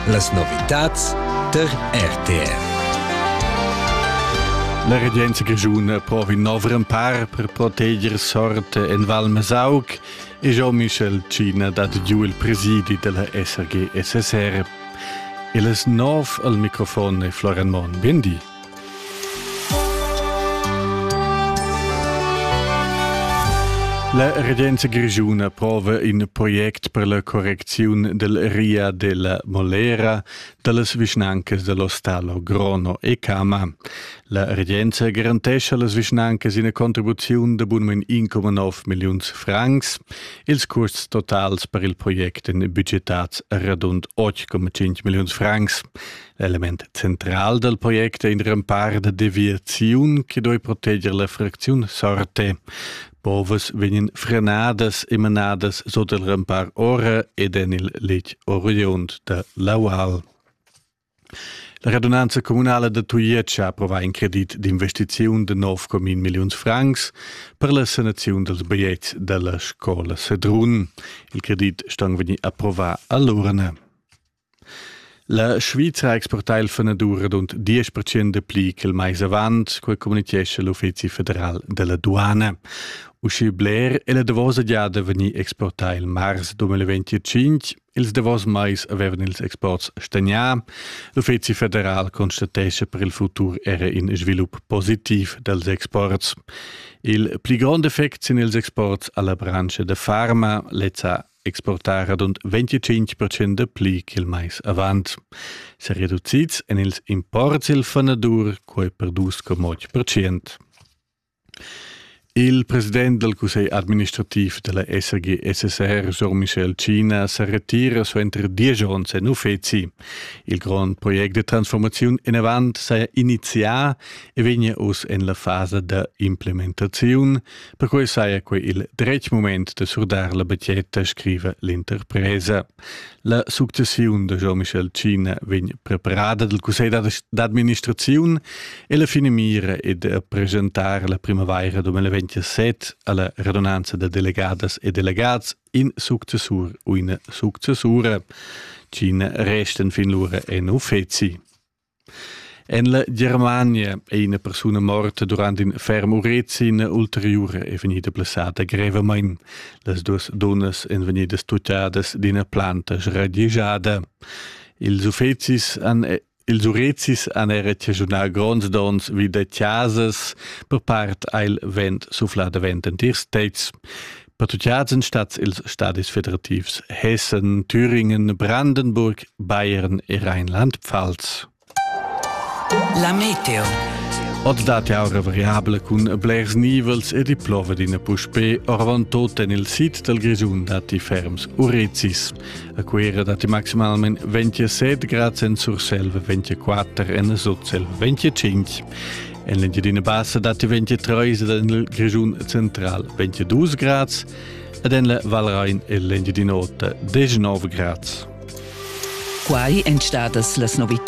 Las novitads tar RTR. La regenza grischuna provi nov rempar per proteger sort en Val Mesauc e Jean-Michel China dat giu il presidi della SRG SSR. E les nov al microfon e Florian Mon. Bindi. La regenza grischuna prova in project per la correcziun del ria della Molera dallas vischnancas dello Stallo Grono e Cama. La regenza garantescha las vischnancas ina contribuziun de bunmen 1,9 milliuns francs. Ils custs totals per il project en budgetats radund 8,5 milliuns francs. L'element central dal project è in rempar da deviaziun che doi proteger la fracziun Sorte. Povas vegnan frenadas e manadas sot il rempar ora ed en il letg oriund da l'Aual. La radunanza communala da Tujetsch ha approvà in credit d'investiziun de 9,1 milliuns francs per la sanaziun dels baiets della scola Sedrun. Il credit ston vegnir approvà all'urna. La Svizra ha exportà il fanadur radund diesch percent dapli ch'il mais avant, quai communitgescha l'Uffizi federal da la duana. Uschè bler è la davosa giada vegnì exportà il mars 2025. Ils davos mais avevan ils exports stagnà. L'Uffizi federal constatescha per il futur era in svilup positiv dals exports. Il pli grond effect sin ils exports alla branscha da farma, lezza exportar radund 25 procent da pli ch'il mais avant. Se reducids en ils imports il fanadur, quai per 2,8 procent. Il president del Cussegl administrativ della SRG SSR Jean-Michel China se retira suenter diesch onns en uffizi. Il grond project de transformazione in avant s'è inizià e vegna uss en la fase de implementazione Perquei saja quei il dretg mument da surdar la batgetta, scriva l'interpresa. La successiun da Jean-Michel Cina vegn preparada dal Cussegl d'administraziun e la finamira è da presentar la primavaira 2027 alla radunanza da delegadas e delegats in successur u ina successura. Cina resten fin lura en uffeci. En la Germania è ina persuna morta durant in ferm urezi ina ulteriura è vegnida blessada grevamain. Las duas dunnas èn vegnidas tuttadas d'ina planta sradigiada. Ils uffizis han ils urezis han era chaschunà gronds donns vi da chasas, per part ha il vent suflà davent entirs tetgs. Per tutgiads en stats ils stadis federativs Hessen, Thüringen, Brandenburg, Bayern e Rheinland-Pfalz. La meteo. Oz dat jau variabla cun blers nivels e diplova d'ina puspè orvant tot en il sid dal Grischun datti ferms urezis. A Cuera datti maximalment 27 grad en Surselva, 24 en Sotselva, 25. En l'Engiadina Bassa datti 23 en il Grischun central, 22 grads ed en la Valrain e l'Engiadina Ota 19 grads. Quai èn stadas las novitads.